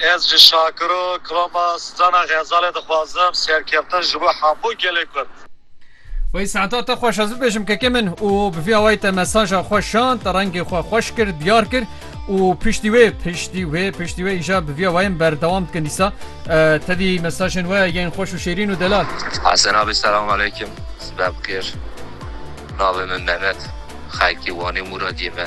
Ez ji Şakiro Kroma Stana Xezalê dixwazim serkeftin ji bo hemû gelê Kurd. Wey saeta te xweş ez bibêjim kekê min û bi vî awayî te mesaja xwe şand, rengê xwe xweş kir, diyar kir û piştî wê piştî wê piştî wê îja bi vî awayên berdewam dikin dîsa tevî mesajên we yên xweş û şêrîn û delal. Hesen abî selam aleykum sibebixêr navê min Mehmet xelkê Wanê Mûradiyê me.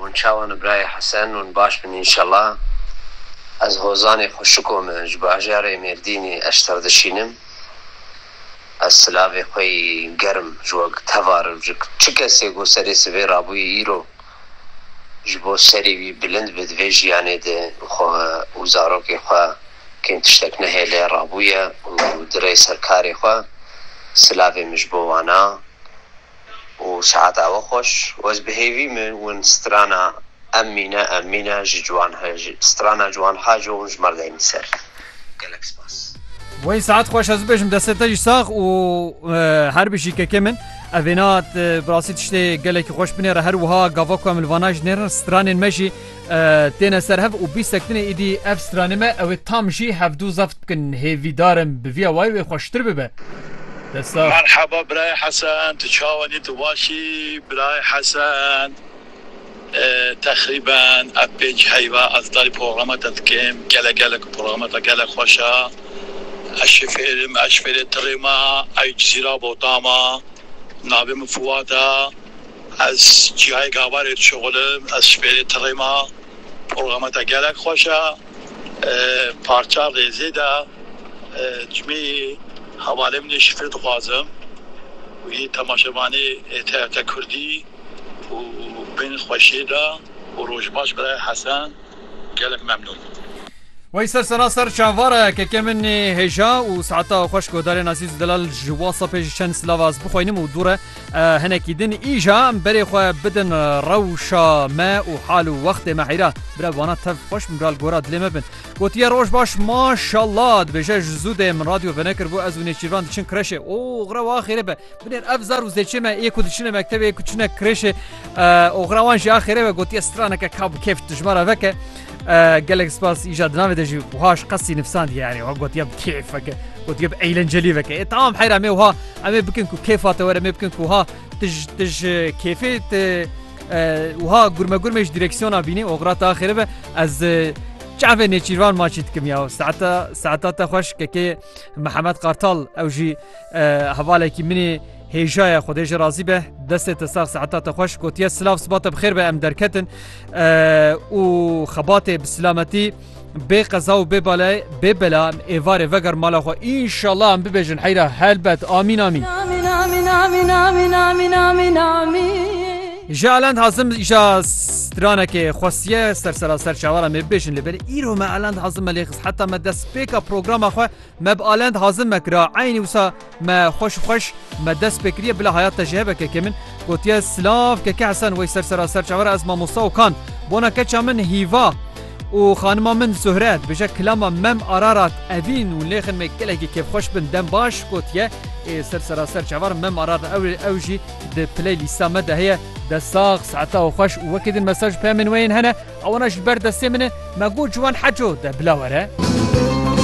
Hûn çawan birayê Hesen hûn baş bin înşellah ez hozanê xweşiko me ji bajarê mêrdînî eşter dişînim ez silavê xwe yî gerim ji we tevarim ji çi kesê ku serê sivê rabûyî îro ji bo serê wî bilind bi divê jiyanê de xwe û zarokê xwe kêm tiştek nehêle rabûye û dire ser karê xwe silavê min ji bo wana û saet awe xweş û ez bi hêvî min win strana em mîne em mîne ji ciwan he ji strana ciwan ha jo hûn ji mar deyne ser. Gelek spas. Wayne saet xweş ez bibêjim destê te jî sax û her bijî kekê min. Ev vêna bi rastî tiştê gelekî xweş binêre her wiha gava ku em li vana jî nêrin stranên me jî Têne serhev û bîst sektinê îdî ev stranê me ewê tam jî hevdu zeft bikin hêvîdar im bi vîya wayî wê xweştir bibe. Destsax. Merhaba birayê Hesen tu çawan î tu baş î birayê Hesen texrîben ev pênc heyva ez darî programa te dikim gelek gelek programa te gelek xweş a ez şifêr im ez ji fêrê tirê ma ewî cizîra botama navê min Fiwat a Ez cîhayê gavarê dişuxul im, ez ji pêrê tirê ma. Porgama te gelek xweş e. Parça rêzê de cimê yê hevalê min ê şifre dixwazim û yê temaşevanê ê TRT Kurdî û bên xweşiyê de û roj baş birayê Hesen. Gelek memnûn. Wey ser sena ser çavara keke min ê hêja û saeta xweş guhdarên Azîz û Delal ji Whatsappê ji çend silav ez bixweynim û dûre hinekî din îja em berê xwe bidin rewşa me û hal û wextê me heyra bira wana tev xweş min bral gora dilê me bin gotiye roj baş maşallah dibêje ji zû dê min radyo venekir bû ez û nêçîrvan diçin kreşê o xrewa xêrê be Binêr ev zar û zêçê me yê ku diçine mektebê ku çine kirêşê oxira wan jî axêrê ve gotiye straneke ka bi kêf dijmara veke gelek spas îja di navê de jî wiha ji qesî nifsandiye yanî wa gotiye bi kêf veke gotiye bi eğlencelî veke ê tamam heyra me wiha em ê bikin ku kêfa te were me bikin ku wiha tij tij kêfê te wiha gurme gurmê ji direksiyona bînî oxira te axêrê ve ez çavê nêçîrvan maçî dikim ya saeta saeta te xweş kekê Mihemed Qartal ew jî Hevalekî min ê hêja ye Xwedê ji razî be destê te sax seeta te xweş gotiye silav siba te bixêr be em derketin û xebatê bi silametî bê qeza û bê balay bê bela em êvarê veger mala xwe înşallah em bibêjin heyra helbet amîn amîn Ji elend hazim îşa stranekê xwestiye ser seraser çawaran ê bêjin li ber îro me elend hazim me lê xis heta me destpêka programa xwe Me bi alend hazin me kira eynî wisa me xweş û xweş me dest pê kiriye bila heyat te ji hebe kekê min gotiye silav keke hesen wey ser sera ser çavera ez mamosta û kan bona keça min hîva û xanima min zuhre dibêje kilama mem ararat evîn û lêxin me gelekî kêfxweş bin dem baş gotiye ê ser sera ser çavar mem ararat ew ew jî di play lîsta me de heye dest sax saeta û xweş û wekî din mesaj pemên weyên hene ewana ji ber destê min e me got ji wan heco de bila were.